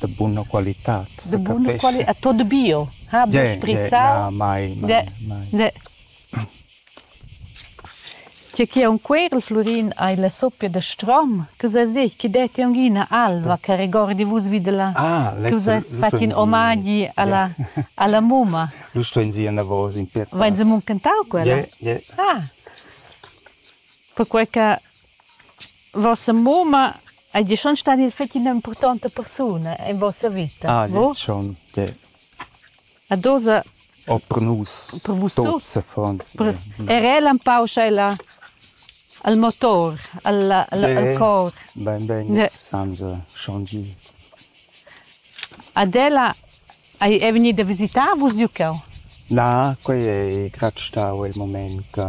de buna qualitad. De buna qualitad, è tot bio, ha buca sprizzau. Ne, ne. Tge che un querl Flurin hai la soppia de strom, che sa dir, che detti un ina alva che regordi vus vid la. Ah, tu seis fattin omagi alla alla mumma. Lu stuein sie davos in piet. Vein se muncentau quella? Yeah, yeah. Ah. Perquei che Vossa mumma ei schon stada fetg ina impurtonta persuna en vossa vita. Ah, gliez schon. De. A dosa O per nus. Per vus tuts affons. Er el empau sch'ella al motor, al, al, al cor. Ben, ben, senza schon gi. Ad ella hai è vegnida a visitar vus giucau? Na, quei ei grat stau il moment che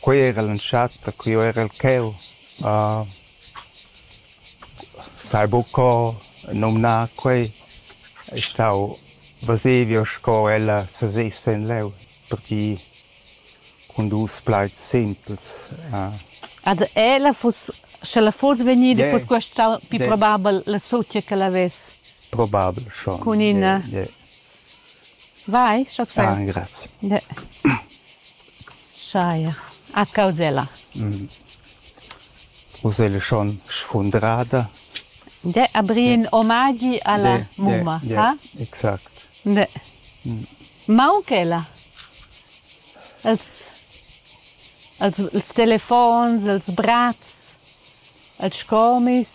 Quei era l'entschatta ch'jeu erel cheu. sai buc co numnar quei. Ei stau Vesevio sco ella seses'en leu, pertgei cun dus plaids simpels. Ed ella fuss, sch'ella fuss vegnida, fuss quest stau pli probabel la sutga ch'el havess. Probabel schon. Cun ina. Vai, scho sai. Ah, grazie. De. Scheir. A causella. Mm. Uselle schon sfundrada. De abrin omagi alla de, mumma, de, de, ha? Exact. De. Mm. Maunchella. Els els, els telefons, els brats, els scomis.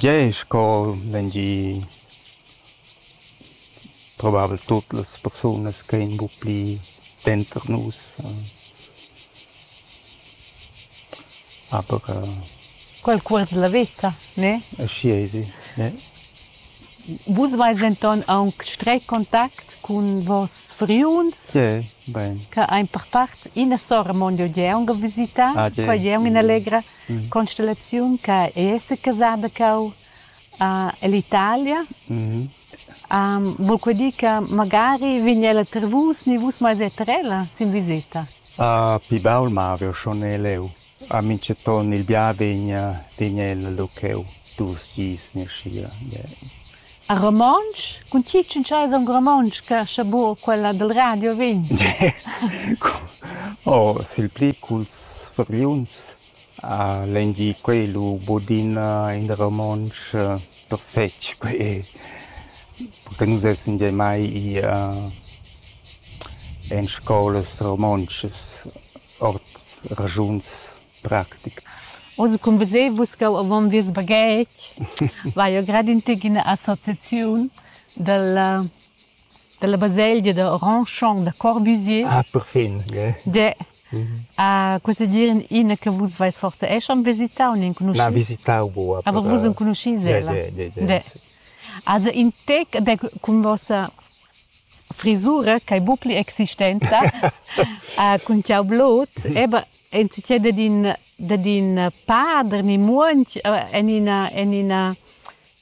Gie, sco vendi Probabel tut las persunas che ein buca pli denter nus, aber Qualcuns dalla veta, ne? Aschia esi, ne. Vus veis denton aunc stretg contact cun vos friuns, che ein per part ina sora mon jeu jeu aunc visitar, qua jeu ina allegra constellaziun che ei esser casada cheu. ell'Italia. Vul que dir che magari vegn ella ter vus ni vus mais er ter ella sin viseta? Pi baul mav'jeu schon e leu. A mintgaton il bia vegn vegn ella lu cheu dus gis ni aschi. A romontsch? Cun tgi tschintschai aunc romontsch che scha buca quella dil radio vegn? Oh, sil pli culs fargliuns. Legn di quei lu budina in da romontsch perfetg quei che nus essan gia mai i en scolas romontschas ord raschuns practicas. Oz cun veser vus ch'jeu avon vies baghetg vai jeu grad in tec ina associaziun dalla dalla baselgia da Randchon da Corbusier. Ah perfin, gie. Questa dir ina che vus vais forte è schon visitau n'enconuschis? Na, visitau bu. Aber vus enconuschis ella? Also in tec de cun vossa frisura ch'ei bucli existenza cun tiu blut, eba enzitgei dad in dad in pader ni muonch en ina en ina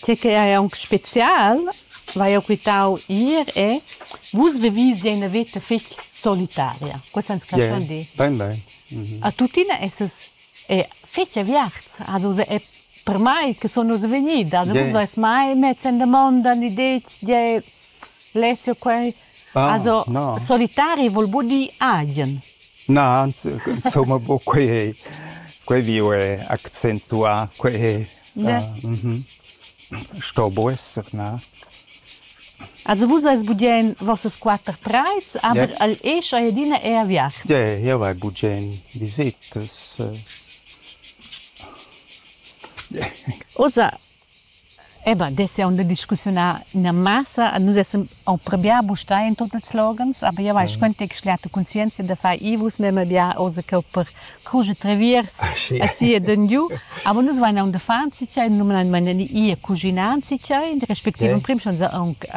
Tge che ei aunc special, vai jeu quitau ir è vus vevis ja ina veta fetg solitaria. Quests han respundì. Bein, bein. A tuttina esses è fetg aviarts. Also è per mai che sun nus vegnidas. Vus veis mai mess en damonda l'idea tgei Lezio quei also solitari vul buca dir agen. Na, insomma buca quei ei, quei viu è accentuà, quei è sto buca esser, na. Also vus eis bugen vossas quater trais, aber el escha adina è a viacht. Ie, jeu vai bugen visitas. Ussa, Eba, dess jau da discussiunar ina massa. Nus essan approbià bustai en tut ils loghens, aber jau hai squentg schliata conscienzia da far i. Vus memia bia oz cheu per crusch e treviers aschi ed engiu. Aber nus vein aunc d'uffant sitgei, numnadmein ir cuschinar sitgei, respektiv emprim schon aunc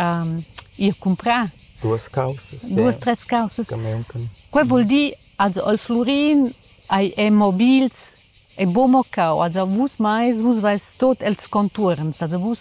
ir cumprar. Duas caussas. Duas, tres caussas. Quei vul dir Also al Flurin ei è mobils e buca mo cau, also vus meis, vus veis tot els contuorns, also vus